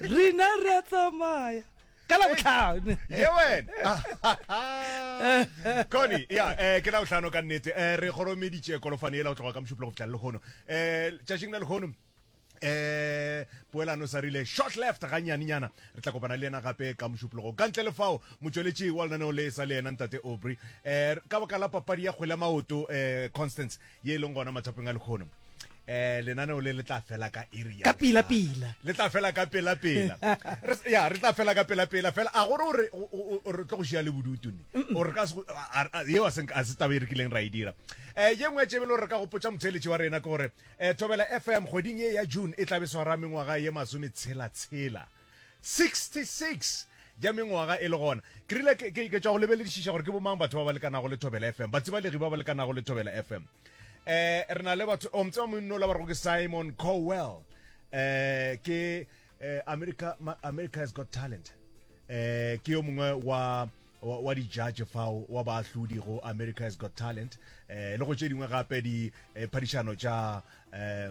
rena re a tsamaya ka la botlhano ye wena cony ya um eh, ke la botlhano ka nnete um re goromeditše kolofane ela go tloga ka mošuplo go fitlha lehono um eh, tšatšing la lehono eh poelano sa rile short left ga nyaninyana re tla kopana le yena gape ka mošupologo ka ntle le fao motsweletši wa lenaneo le sa le yena ntate obry eh ka baka la papadi ya kgwele maoto eh constance ye e leng gona matsapeng a lekgono eh lenaneo le le tla fela ka iri ya ka pila pila le tla fela ka pela pela ya re tla fela ka pela pela fela a gore gore re tlo go shia le bodutu ne gore ka se ye wa seng a se taba re kileng ra e dira eh ye ngwe tšebe lo re ka go potsa motsheletsi wa rena ke gore eh thobela fm goding ye ya june e tla be swara mengwaga ye masome tshela tshela 66 ja mengwaga e le gona. Ke rile ke, ke, ke tšwa go lebeledišiša gore ke bomang batho ba ba lekanago le Thobela FM, batsibalegi ba ba lekanago le Thobela FM. Eh, re na le batho, o mtseba monna ola ba rego ke Simon Cowell. Eh, ke eh, America, Ma- America has got talent. Eh, ke yo mongwe wa wa, wa di-judge fao wa baahlodi go america has got talent eh, le go tše dingwe gape diphadišano eh, tša eh,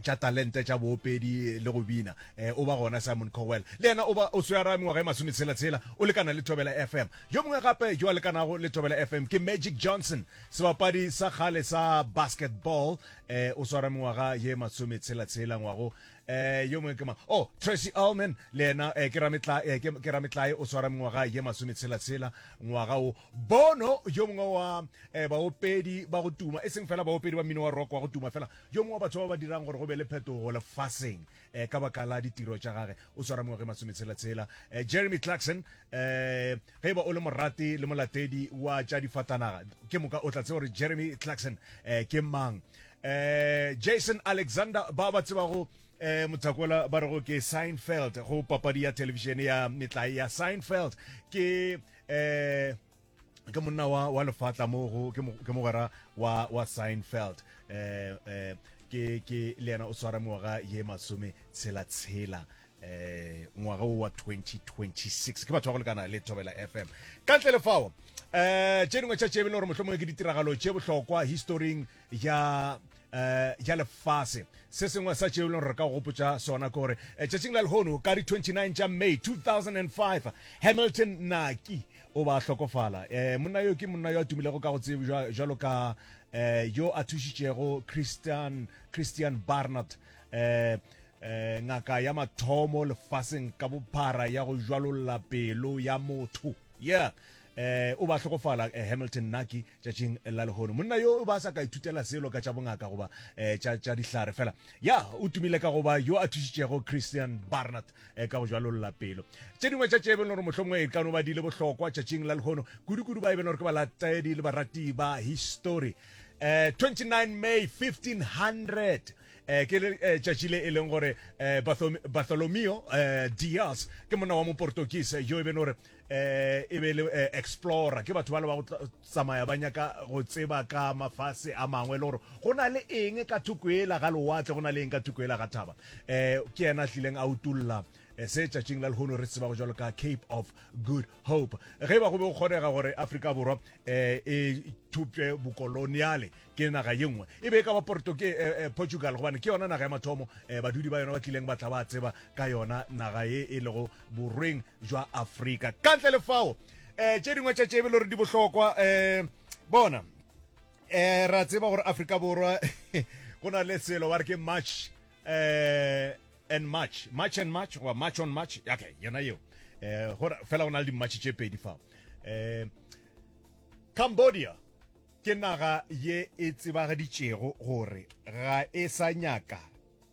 tša talente tša boopedi le go bina eh, o ba gona simon cowell le yena o ba o swara mengwaga e masometshela-tshela o lekana le tobela fm yo mongwe gape yo a lekanago le tobela fm ke magic johnson sebapadi sa kgale sa basketball eh, o swara mengwaga ye masometshela-tshela ngwago eh yo mongwe ke mang oh tracy allman le yena eh, ke rametlae eh, ke- ke rametlae o swara mengwaga ye masometshela-tshela ngwaga o Bono, yo mongwe wa eh, baopedi ba go tuma, e seng fela baopedi ba mmino wa rock wa go tuma fela, yo mongwe wa batho ba ba dirang gore go be le phetogo lefaseng eh, ka baka la ditiro tša gage, o swara mengwaga e masometshela-tshela. Eh, Jeremy Clarkson, eh, ge e ba o le morati le molatedi wa tša difatanaga, ke moka o tla tseba gore Jeremy Clarkson eh, ke mang. Eh, Jason Alexander, ba ba tsebago eh mothakola ba re go ke Seinfeld go papadi ya television ya metlae ya Seinfeld ke eh ke monna wa wa lefatla mo go ke mogwera wa wa Seinfeld eh eh ke ke le yena o swara ngwaga ye masome tshela tshela eh ngwaga wa 2026 ke batho ba go lekana le thobela fm ka ntle le fao eh tše dingwe tša tšebe le gore mohlomongwe ke ditiragalo tše bohlokwa historing ja eh ja lefase se sengwe sa tšeo e leng re ka gopotsa sona ke gore eh, tšatšing la lehono ka di 29 tša may 2005 hamilton naki o ba hlokofala eh monna yo ke monna yo a tumilego ka go tsebo jalo ka eh yo a thušitšego christian christian barnard eh eh ngaka ya mathomo lefaseng ka bophara ya go jwalolla pelo ya motho yeah eh o ba hlokofala eh, hamilton naki Tšatšing la lehono, monna yo o ba sa ka ithutela selo ka tša bongaka goba eh, tša, tša dihlare fela. Ya, o tumile ka goba yo a thušitšego Christian Barnard eh, ka go jwalolla pelo. Tše dingwe tša tše e beno gore mohlomongwe e ka no ba di le bohlokwa tšatšing la lehono, kudu-kudu ba e beno gore ke balatedi le barati ba histori. Eh, 29 May 1500 eh, ke le- eh, tšatši le e leng gore eh, Barthom- Bartholomeo eh, Diaz ke monna wa moportokise yo e beno gore eh e be le eh, explorer ke batho ba le ba go tsamaya ba nyaka go tseba ka mafase a mangwe le gore go na le eng ka thoko ela ga lewatle go na le eng ka thoko ela ga thaba eh ke yena a tlileng a utulla eh, se tšatšing la lehono re tseba go jalo ka cape of good hope ge ba go be go kgonega gore afrika borwa eh, e thupše bokoloniale ke naga ye nngwe e be e ka ba porto ke eh, eh, portugal gobane ke yona naga ya mathomo eh, badudi ba yona ba tlileng ba tla ba tseba ka yona naga ye e lego borweng jwa Afrika. Ka ntle le fao, eh, tše dingwe tša tše e be le gore di bohlokwa eh, bona eh, ra tseba gore Afrika Borwa go na le selo ba re ke march eh, and march march and march goba march on march okay yona yeo eh, gore fela go na le dimatšhe tše pedi fao eh, cambodia ke naga ye e tsebagaditšego gore ga e sa nyaka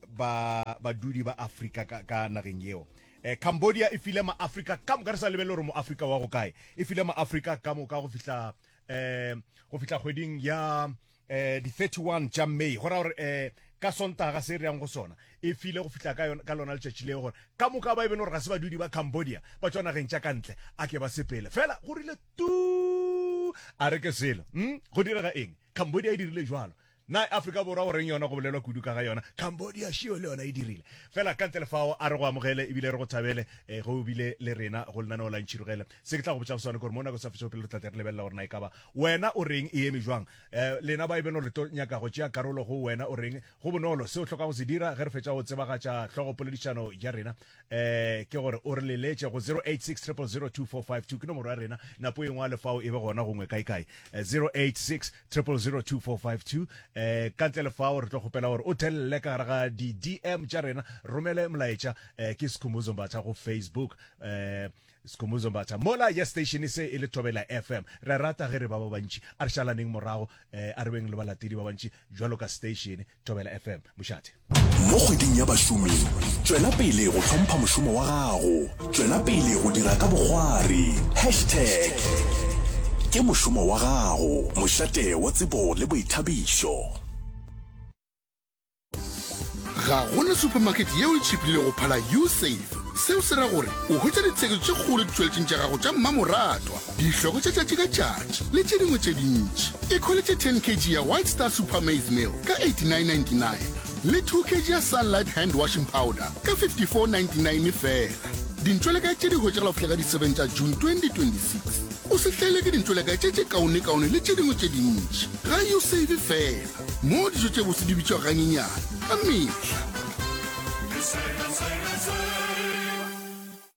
ba badudi ba Afrika ka, ka nageng yeo eh, Cambodia e file maafrika ka moka re sa lebele gore moafrika wa go kae e file maafrika ka moka go fihla eh, go fihla kgweding ya eh, di 31 tša may go ra gore eh, ka sontaga se re yang go sona e file go fihla ka, ka lona letšatši leo gore ka moka ba e bele gore ga se badudi ba cambodia ba tswa nageng tša ka ntle a ke ba sepele fela go rile tu a re ke selo mm? go direga eng cambodia e dirile jalo Na Afrika Borwa go reng yona go bolelwa kudu ka ga yona? Cambodia šio le yona e dirile. Fela ka ntle le fao, a re go amogele e bile re go thabele eh, ge o bile le rena go lenaneo la Ntšhirogele. Se ke tla go botšago sona ke gore mo nako e sa fetšego pele re tla tle re lebelela gore na e ka ba wena o reng e eme bjang. Eh, lena ba e beno re tlo nyaka go tšea karolo go wena o reng. Go bonolo, se o hlokago go se dira ge re fetša go tsebagatša hlogopoledišano ya rena eh, ke gore o re leletše go 0860002452 ke nomoro ya rena. Napo e ngwale fao e be gona gongwe kae-kae. Eh, 0860. 000245 um ka ntle le fao re tlo kgopela gore o thelele ka gare ga di-dm tša rena romele molaetša um ke sekhumuzo mbatha go facebook um sekhumuzo mbatha mola ya station se e le thobela fm re rata ge re ba ba bantši a re šalaneng morago um a re beng le balatedi ba bantši jwalo ka station Thobela FM Mošate. Mo kgweding ya bašomi, tšwela pele go hlompha mošomo wa gago. Tšwela pele go dira ka bogwari. Hashtag ke mošomo wa gago, mošate wa tsebo le boithabišo. Ga go na supermarket yeo e tšhiplile go phala Usafe. Seo se ra gore o hwetša ditheko tše kgolo ditšweletšeng tša gago tša mmamoratwa. dihlogo tša tšatši ka tšatši le tše dingwe tše dintši. E kholetše 10 kg ya White Star Super Maize Meal ka 89.99 le 2 kg ya Sunlight Hand Washing Powder ka 54.99 fela. Dintšwelekae tše di hwetšagala go fihla ka di 7 tša June 2026. O se hlaelwe ke dintšwelekae tše tše kaonekaone le tše dingwe tše dintši. Ga yo save fela moo dijo tše botse di bitšwa ganyenyane ka mehla.